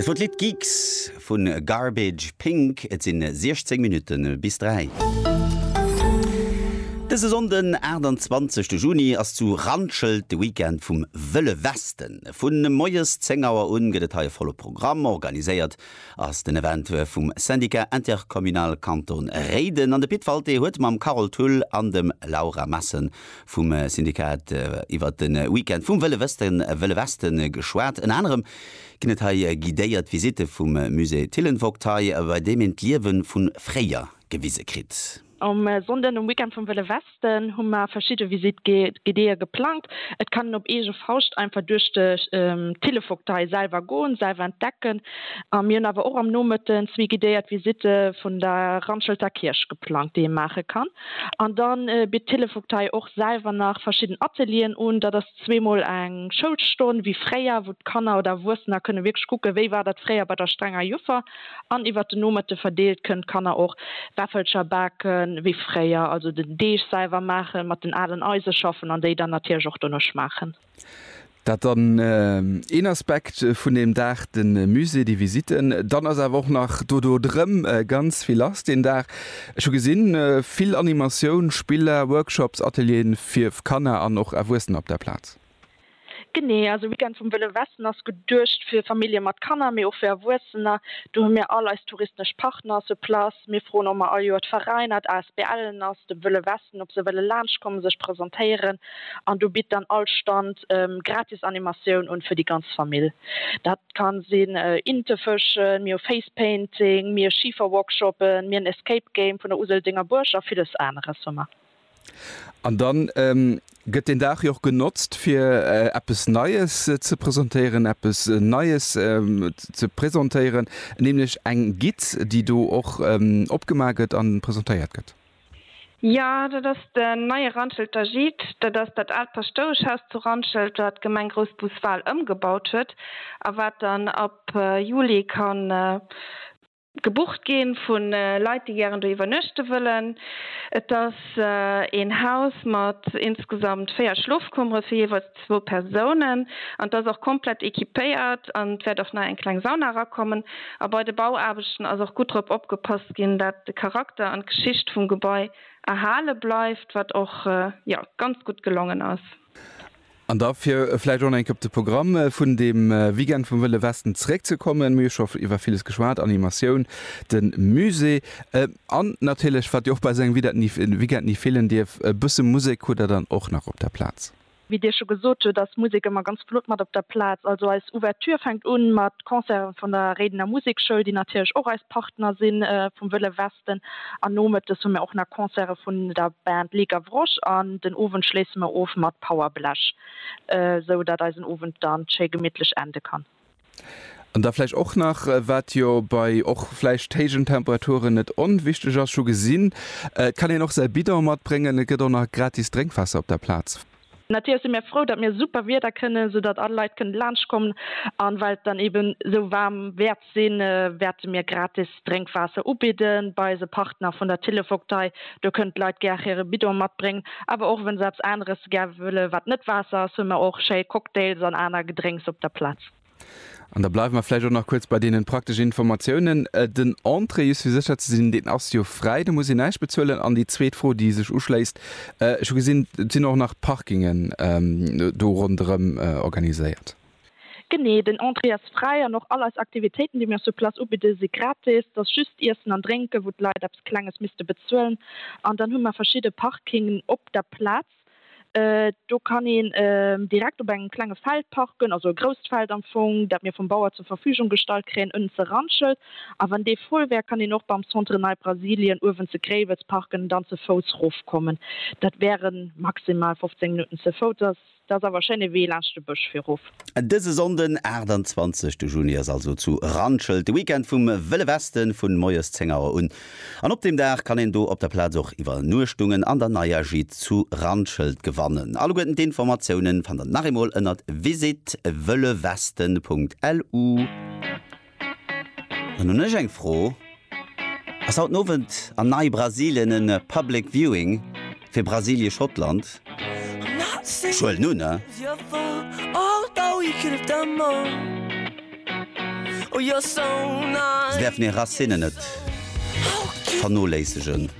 Dat wor d'Lidd Geeks vu Garbage Pink. Et sinn 16 Minutte bis 3. Dëse Sonnden 28 Juni ass zu Randschelt de Weekend vum Wëlle Westen. Vu moies 10 Auer un gëtt et hei e volle Programm. Organiséiert ass den Event vum Syndicat Intercommunal Kanton Réiden an de Pit Walté huet mam Carole Thull an dem Laura Messen vum Syndikat iwwer de Weekend vum Wëlle Wësten, Wëlle Westen, geschwat. Ënner anerem ginn et hei guidéiert Visitte vum Musée Thillenvogtei, bei deem een d'Liewe vu fréier gewise kritt. Um Sonnden, um Weekend vum Wëlle Westen, hu mer verschidde Visitt guidéë geplangt. Et kann een op eege Fauscht einfach duerch d'Thillevogtei selwer goen, selwer entdecken. A mir hunn awer och am Nomëtten zwee guidéiert Visitte vun der Randschelter Kierch geplangt, déi ee maache kann. An dann bitt d'Télé-Vogtei och selwer nach verschidden Atelieren un. Dat ass zweemol eng Schoulstonn, wéi fréier, wou d'Kanner oder Erwuessener kënne wierklech kucken, wéi war dat fréier bei der strenger Joffer. An iwwert den Nomëtte verdeelt kënnen d'Kanner och Wäffelcher baken, wéi fréier, also den Deeg selwer maachen, mat den alen Eise schaffen an déi dann natierlech och dono schmaachen. Dat dann een Aspekt vun deem Dag, de Musée, déi Visitten. Dann ass awer och nach do dodrëm ganz vill lass deen Dag. Ech hu gesinn, vill Animatioun, Spiller, Workshops, Atelieren fir Kanner an och Erwuessener op der Plaz. Genee, also Weekend vum Wëlle Westen ass geduecht fir Famillje mat Kanner, mee och fir Erwuessener. Do hu mir all eis touristesch Partner sur place. Mir froen och mar all Joer d'Veräiner, d'ASBLen ass dem Wëlle Westen, ob se wëlle laanschtkommen, sech presentéieren an do bitt dann all Stand gratis Animatioun un fir déi ganz Famill. Dat ka sinn Inte fëschen, mir hu Face Painting, mir Schiferworkshoppen, mir en Escape Game vun der Useldenger Buerg a villes aneres hu mer. An dann gëtt deen Dag jo och genotzt fir eppes Neies ze presentéieren, eppes Neies ze presentéieren, nämlech eng Guide, déi do och opgemaach gëtt an presentéiert gëtt. Jo, dat ass den neie Randschelter Gîte. Dat ass dat aalt Paschtoueschhaus zu Randschelt, wat d'Gemeng Groussbus-Wal ëmgebaut huet a wat dann ab Juli ka gebucht gi vu Leit, déi gären do iwwernuechte wëllen. Et ass een Haus mat insgesamt véier Schlofkummere fir jeeweils zwou Persounen an d'ass och komplett equipéiert an et wäert och nach eng kleng Sauna erakommen. A bei de Bauaarbechten ass och gutt drop opgepasst ginn, dat de Charakter an d'Geschicht vum Gebai erhale bleift, wat och jo ganz gutt gelongen ass. An da fir vläicht och nach eng Kéier op de Programm vun deem Weekend vum Wëlle Westen zeréckzekommen, mir hu scho iwwer villes geschwat, Animatioun, de Musée an natierlech, wat jo och bei esou engem Weekend ni feelen dierf, e bësse Musek. Hutt Der dann och nach op der Plaz? Wéi Dir scho gesot hutt, ass Musek ëmmer ganz flott mat op der Plaz. Also eis Ouverture fänkt un mat Concerten vun der Réidener Musekschoul, déi natierlech och eis Partner si vum Wëlle Westen. An nomëttes hu mir och nach Concerte vun der Band Les Gavroches an den Owend schléisse mir of mat Power Blech, esou datt eisen Owend dann schéi gemittlech ende kann. An da vläicht och nach, wat jo bei och vläicht héijen Temperaturen net onwichteg ass, ech hu gesinn, et kann een och säi Bidon matbréngen, et gëtt och nach gratis Drénkwaasser op der Plaz. Natierlech si mir frou, datt mir super Wieder kënnen, soudatt all Leit kënnen laanschtkommen. An well et dann eeben esou waarm wäert sinn, wäerte mir gratis Drénkwaasser ubidden. Bei eise Partner vun der Tillevogtei, do kënnen d'Leit gär hire Bidon matbréngen. Awer och wann se eppes aneres gär wëllen, wat net Waasser ass, hunn mer och schéi Cocktails an aner Gedrénks op der Plaz. An da bleiwe mer vläicht och nach kuerz bei deenen prakteschen Informatiounen. Den Entrée, just fir sécher ze sinn, deen ass jo fräi, do muss een näischt bezuelen. An déi zweet Fro, déi sech uschléisst, Ech hu gesinn, et sinn och nach Parkingen do ronderëm organiséiert. Genee, den Entrée ass fräi an och all eis Aktivitéiten, déi mir sur place ubidden, si gratis. Et ass just Iessen an Drénken, wou d'Leit eppes Klenges misste bezuelen. An dann hu mer verschidde Parkingen op der Plaz. Do kann een direkt op engem klenge Feld parken, also e grousst Feld am Fong, dat mir vum Bauer zur Verfügung gestallt kréien, ënnen ze Randschelt. A wann dee voll wär, kann een och beim Centre Nei Brasilien uewen zu Gréiwels parken an dann ze Fouss rofkommen. Dat wäre maximal 15 Minutten ze Fouss. Dat ass awer e schéine Wee laanscht de Bësch fir erof. Dëse Sonnden, 28 de Juni, ass also zu Randschelt de Weekend vum Wëlle Westen, vun moies 10 Auer un. An op deem Dag kann een do op der Plaz och Iwwernuechtungen an der neier Gîte zu Randschelt gewannen. Alleguerten d'Informatiounen fannt der nach eemol ënnert visitewëllewesten.lu. Dann hunn ech eng Fro, Ass haut den Owend an Nei Brasilien en Public Viewing fir Brasilie Schottland? Ech huelen un, se däerfen hir Racinen net vernoléissegen.